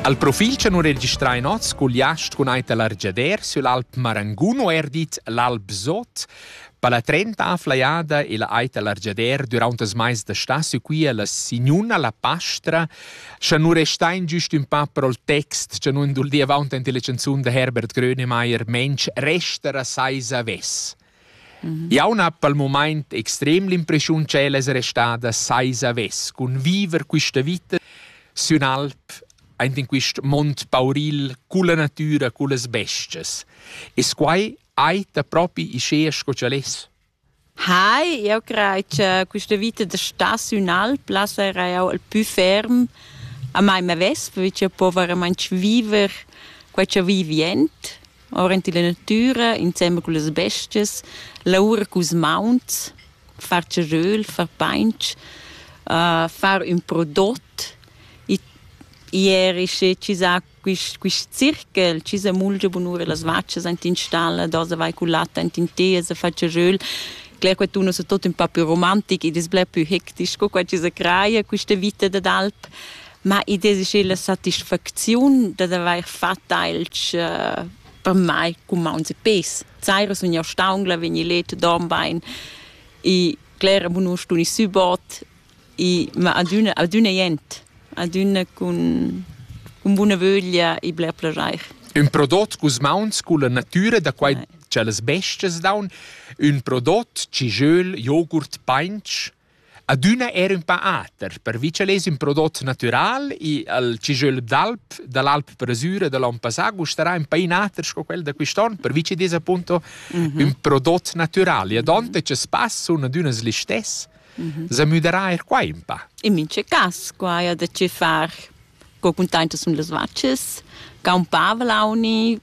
Al profil cha nu registrai nots cugliast cun ait l'argiader sül Alp Marangun o eir dit l'Alp Sot. Per la trenta afflaiada e la ait l'argiader düraunt as mais da stà sü quia la signuna la pastra, scha nu restain güst ün pa pro'l text cha nu induldia avaunt ant illa chanzun da Herbert Grönemeyer «Mensch, resta ra seis avess». Jau n'ha pel mumaint extrem l'impreschiun ch'el es restada saisa vess cun viver quista vita sün alp aint in quist mond pauril culla natüra, cullas bes-chas. Es quai eir propi uschea sco ch'el es? Hai, eu craj cha quista vita da star sün alp là sarà eau il pü ferm a mai m'avess, perche eu po veramaing viver quai cha vivi jent. aurent illa natüra insembel cullas bestias, laura culs mauns, far ceröl, far painch, far ün prodot. Ier isce chi sa quist quist circhel, chi sa mulgia bunura las vachas aint in stalla, dasa vai cul lat aint in teas a far ceröl. Cler quattun es tot ün pa più romantic ed es bler pü hectic sco qua chi sa craja quista vita dad alp. Ma i desi la satisfacziun dad avair fat ailch uh, per mai cumaunz e pes. Saira sun jau staungla, vegni let, dorm bain e clera bunur stuni subot e ma adüna, adüna jent, adüna cun, cun buna vöglia e bler plajair. Un prodot cus mauns culla natüra da quai tschellas bestias daun, ün prodot ci jöl, jogurt, painch, Adüna era ün pa ater, pervi cha lez ün prodot natüral i al cijöl d'alp da l'alp Bresura da l'on passà gustarà ün pa inater sco quel da quist'on, pervi chi'd es appunto ün prodot natüral. E adonta cha spass sun adüna ils listess, s'ha müderà eir qua ün pa. In mincha cas qua haja da che far co cuntaintas sun las vachas, caun pavlauni,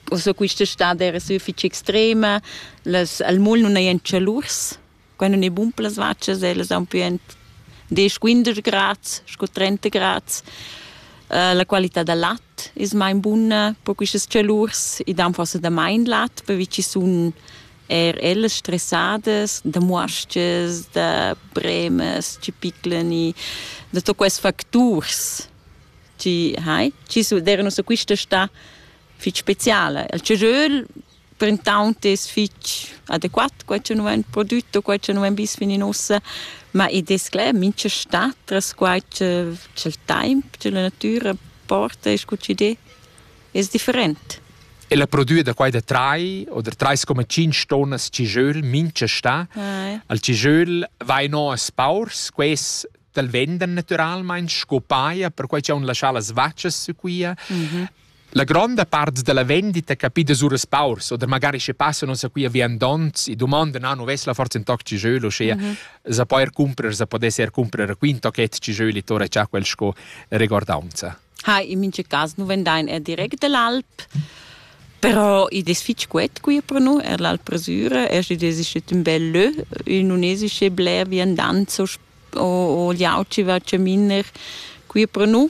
o so quista stad era sü fich extrema, las al mol nun hajan chalurs Quai nun è bun per las vachas, ellas haun pü ent desch, quindesch grads scu trenta grads. La qualità da lat es main buna per quistas chalurs. I dan forsa damain lat pervi chi sun eir ellas stressadas da muos-chas, da bremas chi piclan i, da tuot quels facturs chi hai, chi su d'eiranu su quista stà fich speciala. Il chagiöl printaunt es fich adequat quai cha nu vain prodüt o quai cha nu vain vis fin in uossa, ma id es cler mincha stat tras quai cha cha'l taimp, cha la natüra porta e scu ch'idé es different. E la prodüa da quai da trai o da trais coma tschinch tonnas cijöl mincha stà, al cijöl vain o as paurs, quels t'al vendan natüralmaing sco paja per quai cha haun laschà las vachas sü quia. La gronda part dalla vendita capida suras paurs oder magari sche passan uns a qui a viandonts e domandan ah, nu vessla forza in toc ci jeu loschea mm -hmm. za poer cumprer, za podes er cumprer qui in tochet ci jeu li tora cha quel sco recordaunza. Ha, in mince cas nu vendain er direct dall'Alp. Però i des fitg quet qui per nu, er l'Alpresura, er si des ist un bel lö, in unesische bler viandanzo o, o liauci va ceminer qui per nu,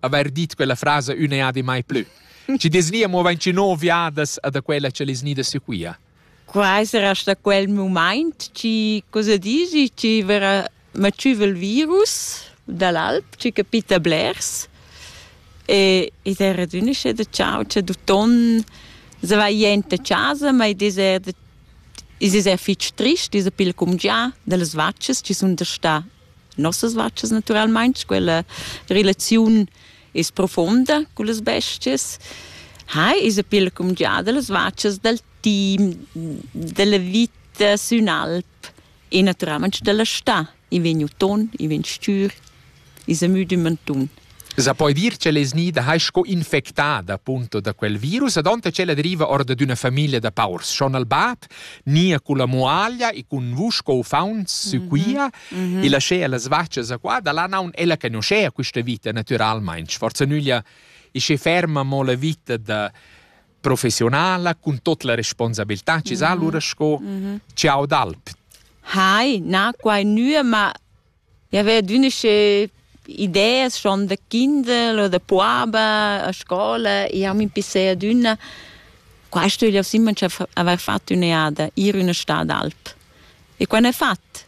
haver dit quella frasa ün'eadi mai plü. Ci desnia mo vain ci no viadas a da quella che les nida sequia. Quai sarà sta quel moment, ci cosa dici, ci verrà maciva il virus dall'alp, ci capita blers. E ed era d'unisce de ciao, c'è du ton, se va jente casa, ma ed è is es er fitg trist, is a pil cum già, delle vacces ci sun da sta nossas vachas naturalmein quella relaziun is profonda con las bestias ha is a pil cum giada las vachas dal team della vita sün alp e naturalmente della sta i vegn uton i vegn stür i sa müd in mantun Sa poi dir che lez nida hai sco infectada punto da quel virus ad onte che la deriva or da d'una famiglia da paurs schon al bat nia con la muaglia e con vusch co fauns sequia e laschea las vaccias a qua da là naun ella conoscea questa vita naturalmente forza nüglia e che ferma mo la vita da professionala con tot la responsabilità ci sa allora sco ciao d'alp Hai, na quai nua, ma I aveva adüna sche ideas schon da kinder o da puaba a scola. Jau m'impissei adüna, quaist ögl aus imma cha avair fat ün'eada, ir üna stà d'alp. E quai n'he fat.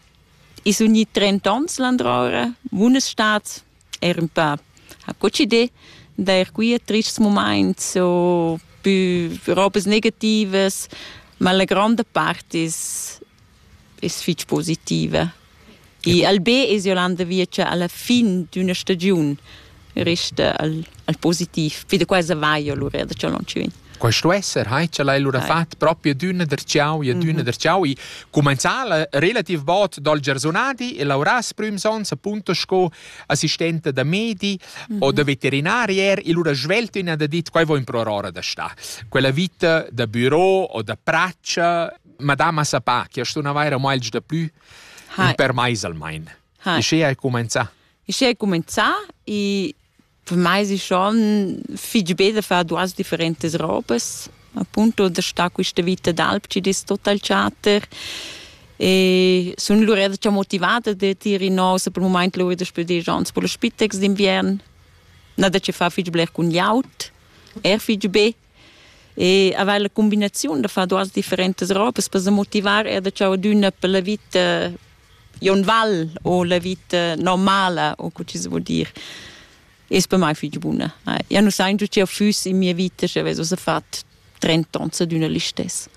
I sun gnit trent ons landroura, bunas stats, eir ün pö. Ha coccidé d'eir qui a trists mumaints o pü robas negativas, ma la gronda part es es fich positiva. I Albé es jo l'anda via cha alla fin d'üna stagiun resta al, al positiv. Poi da quesa va jo lura da Cialonci vin. Questo esser, hai ce l'hai lura fatto proprio d'una der ciao e d'una der ciao. E comenzà relativ bot dal Gersonadi e Lauras prüms ons appunto sco assistente da medi o da veterinarier e lura svelto in da dit quai vo in pro aurora da sta. Quella vita da büro o da praccia Madama sa pa che sto na vaira meglio da plü hai. per mais almain. Hai. E sche hai comenzà? E sche hai comenzà e per mai è schon fitg bel da fare duas differentes robes. Appunto da stare questa vita d'alp ci dis total charter. E sono lura già motivata da dire no, se per il momento lura da spiedere gens per lo spitex d'inviern. Na da ci fa fitg bler con iaut, er fitg be. e aveva la combinazione da fare duas differentes robes per se motivar er da ciao d'una per la vita ionval o la vita normala o co ci vuol dire es per mai fich buna ja nu sai giù che füss in mia vita se avesso se fat 30 ans d'una listess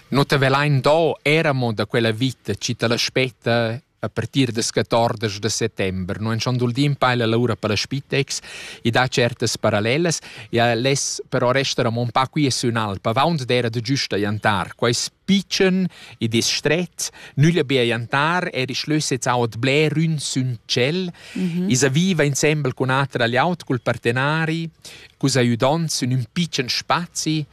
No te velain do eramo da quella vita, ci te l'aspetta a partir das 14 da settember non schon dul din paila l'aura per la spitex e dà certas parallelas ja les però resta mon pa qui su in alpa vaunt d'era de giusta jantar quais picen e distret nüglia bia jantar er ich löset aut bler ün sün cel mhm. isa viva insembel con atra agli aut col partenari cus aiudant sün un picen spazi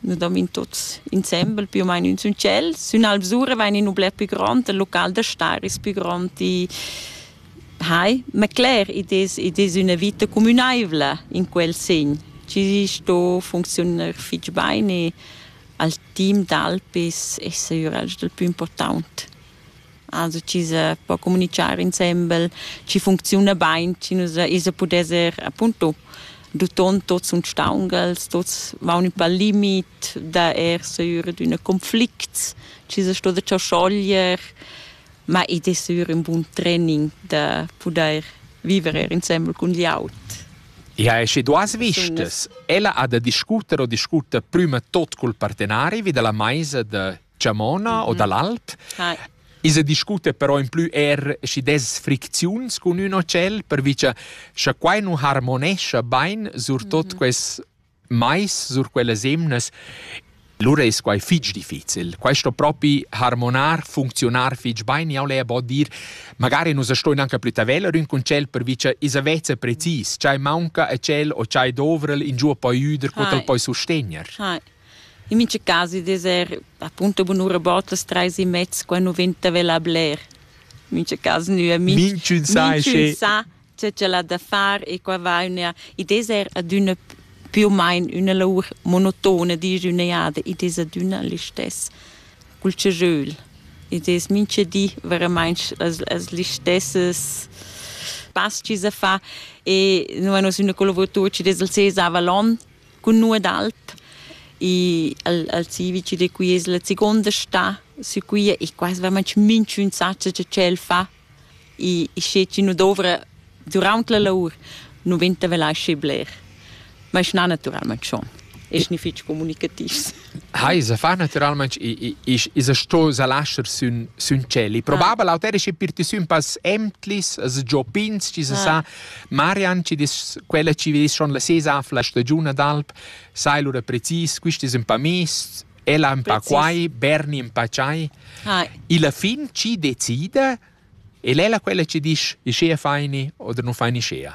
Nous dormin tuts insembel più o meno in ün tschel. Sün Alvsura vain in ün bler più grond, il local da star es più grond i hai. Ma cler, id es, id es üna vita cumünaivla in quel segn. Tgi sto funcziunar fich bain e al team d'Alpis es eir el dal pü important. also chi sa po comunichar insembel, chi funcziuna bain, chi nus isa pudesser appunto duton tots uns staungels, tots vaun ün pal limit da er seur d'üna conflicts, chi sa sto da ciò schoglier, ma id es sür ün bun training da pudair viver er insembel cun glieud. Ja, e sche duas vistas, ella ha da discuter o discuter prüma tot cul partenari vi dalla maisa da chamona o dall'alp. Hi. I se discute però in plü er schi des fricziuns cun ün hotell, pervi cha scha quai nu harmonescha bain sur tot quels mais, sur quellas emnas, lura es quai fich difficil. Questo propi harmonar, funzionar fich bain, jau le po dir, magari nus stoin anche plü taveller ün con tschel, pervi cha i se vezza precis, ch'ai maunca a tschel o ch'ai dovrel, in giù poi üder, co t'el Hai. poi sustegner. Hi. In mincha cas id es eir appunto bunura bod las trais e mezza quando vegn da vela a bler. In mincha cas gnü a mi. Minchün sa che- Minchün sa che ch'el ha da far e qua va üna... Id es eir adüna più u main üna lour monotona, disch üna jada. Id es adüna listess cul cejöl. Id es mincha di veramaing las las listessas pas chi sa fa e nu a nos ün collavuratur chi'd es il Cesar Vallon cun nu ed alt. E al, al civici de qui es la seconda sta su qui e quasi veramente minchun sa che ch'el fa e e sche chi nu dovra durant la lavur nu venta vel aschi bler. Ma es na naturalment schon. Es ni fich comunicativs. Ha, i sa fa naturalmaing, i i's iza sto sa lascher sün sün tschel. Il probabel auter es per ti sün pass emtlis, as giò pins, chi sa sa. Marian, chi dis quella chi vis schon la sesa la stagiun d'alp, sai lura precis, quist es ün pa mist, ella ün pa quai, Berni ün pa tschai. Illa fin chi decida, el è la quella chi disch, ischea faini oder nu faini ischea.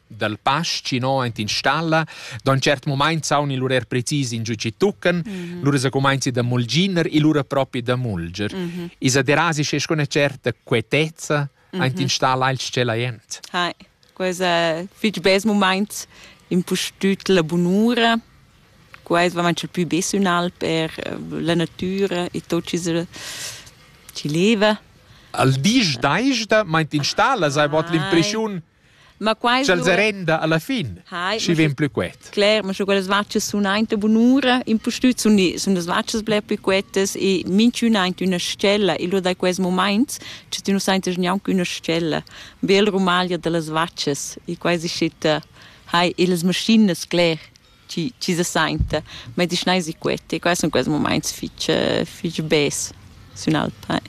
dal pass chi no aint in stalla. Da ün tschert mumaint saun il urer precis in giü chi tuccan, mm -hmm. lura se cumainzi da mulginer e lura propi da mulger. Mm -hmm. Isa derasi sche con certa quietezza mm -hmm. aint in stalla il tschella jent. Hai, quesa fich bes mumaint impustüt la bunura. Quais va manchel pü bes ünal per eh, la natüra e tot chi ci leva. Al disch daista meint in stalla sai bod ah, l'impreschiun Ma quai Sch'el se renda alla fin, Hai, schi vegn plü quet. Cler, ma scho quellas vaccias sun aint bunura, impustüt sun, sun las vaccias bler plü quetas e minchün aint üna stella e lur dai quels momaints che tü nu saintas gnanc üna stella. Bel rumaglia da las vaccias e quai si schitta, hai, e las maschinas, cler. chi, chi se sainta medichinais queti. Quai sun quels mumaints fich, fich bes sün alp.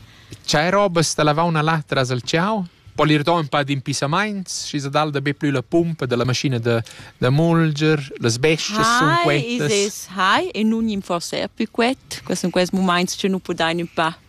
Chai robas da lavauna là tras il ciau? Po ir do ün pa d'impissamaints, schi se dal da be plü la pumpa della maschina da, da mulger, las bescias sun quetas. Hai, isis, hai, e nun gnimforsa er plü quet. Quels sun quels mumaints che nu pudain ün pa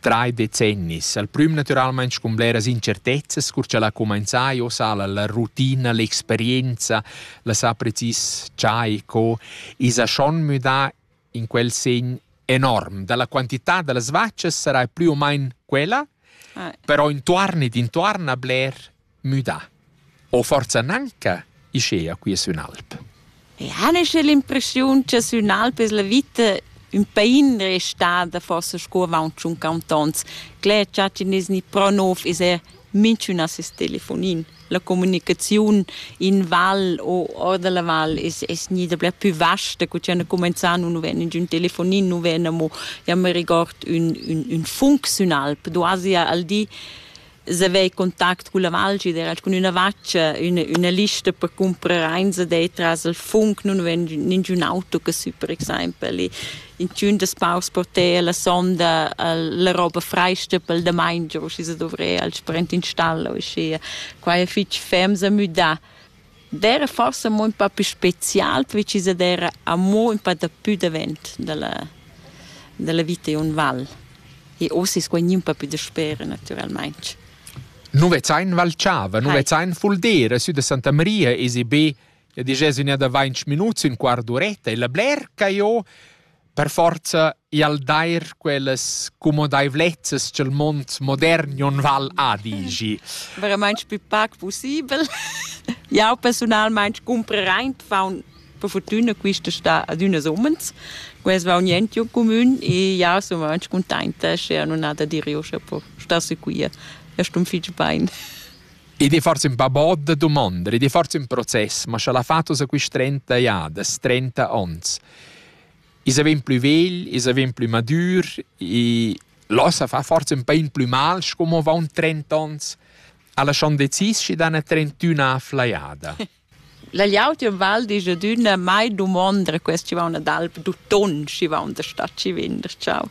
Trai decennis, al prüm natüralmaing cun bleras incertezzas, cur cha l'ha cumainzà e ossa la rutina, l'experienza, la sa precis chai co, esa schon müdà in quel segn enorm. Da la quantità da las vachas sarai plü o main quella, però intuorn ed intuorn a bler müdà. O forza nanca, ischea quia sün alp. E han esce l'impressiun cha sün alp es la vita ün pain restada forsa sco avaunt tschun cantons. Cler cha chi nes ni pro nov es er minchün a ses telefonin. La comunicaziun in val o or da la val es, es gnida bler pü vasta co chi han cumenzà, nu ven ingün telefonin, nu ven amo, ja me regord, ün, ün, ün func sün alp. Du asi al di se avei contact cun la valgi era cun üna vaccia üna, üna lista per comprar eins de tras il funk non ven ningiun auto che su per exempel e in tun das paus porter la sonda la roba freista pel da main giu si se dovre al sprint installo e sia quai è fitch fems a müda D'eira forsa amo ün pa pü special perche chi s'ad eira amo ün pa dapü davent da la da la vita in ün val. E uossa es quai gnü ün pa pü dasper natüralmaing. Nu vezzain Val Chava, nu Hai. vezzain Fuldera, sü da Santa Maria esi be, ja disch, es ün'eada vainch minuts, ün quart d'uretta e la bler ca jo per forza i al dair quellas cumodaivlezzas cha'l mond modern non val adigi. Veramaing pü pac pussibel. Jau persunalmaing cumprerain faun per fortüna quista sta ad üna summens. Quels vaun jent giò cumün e jau sun vainch cuntainta sch'eau nun ha da dir eu scha po star sicür. Eu stun fich bain. Id è forse un po' bod da domandar, id è forse un process, ma scha l'ha fatto sa quist trenta jades, trenta ons. I's vegn plü vegl, i's vegn plü madür e là sa fa forsa ün pa in plü mal sco mo avaunt trent'ans, a lasciand decis schi dan a trentüna a flajada. La gliautia val disch ad üna mai dumonda quest chi vauna d'alp d'uton, schi vaun da sta chi vender, ciao.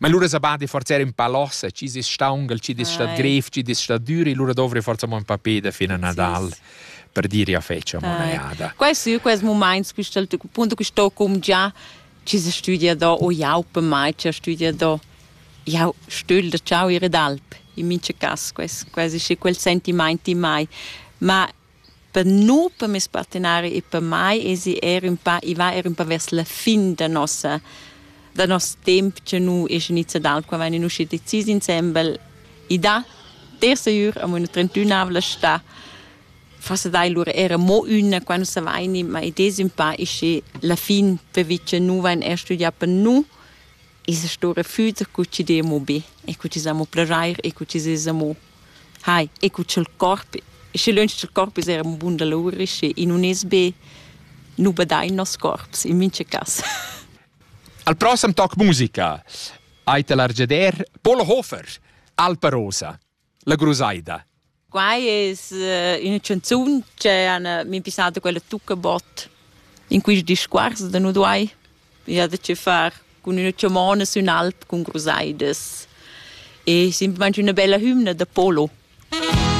Ma lura sa badi forza in pa lossa, ci dis staungal, ci dis stat grev, ci dis stat duri, lura dovri forza mo in pa peda fin a Nadal. Sì per dire a feccia monaiada. Questo questo momento questa punto che sto come già ci si studia da o jau per mai ci studia da jau stöl da ciao ire d'alp in mince cas questo quasi sì quel sentimenti mai ma Per nu, per meis partenari e per mai esi eir ün pa i va eir ün po vers la fin da nossa da noss temp cha nu es inizià dal qua vain uschi decis insembel. I dà der sejür amo üna trentünavla stà. Forsa dai lura eir amo üna quando savaini, ma id es ün pa ischi la fin pervi cha nu vain eir studià per nu. I's stoura füt cu chi d'e amo be e cu chi s'amo plajair e cu chi s'es amo Hai, e cu cha'l corp, schi lönch cha'l corp es eir ün bun dolur, schi i nun es be nu badain noss corps in mincha cas. Al prossem toc musica ait el argeder Pol Hofer, Alpa Rosa, la grusaida. Quai es uh, üna chanzun che han uh, min pissata quella Tuccabot in quist discuors da nu duai Ich hatte che far cun üna chamona sün alp cun crusaidas e simplamaing üna bella hümna da polo.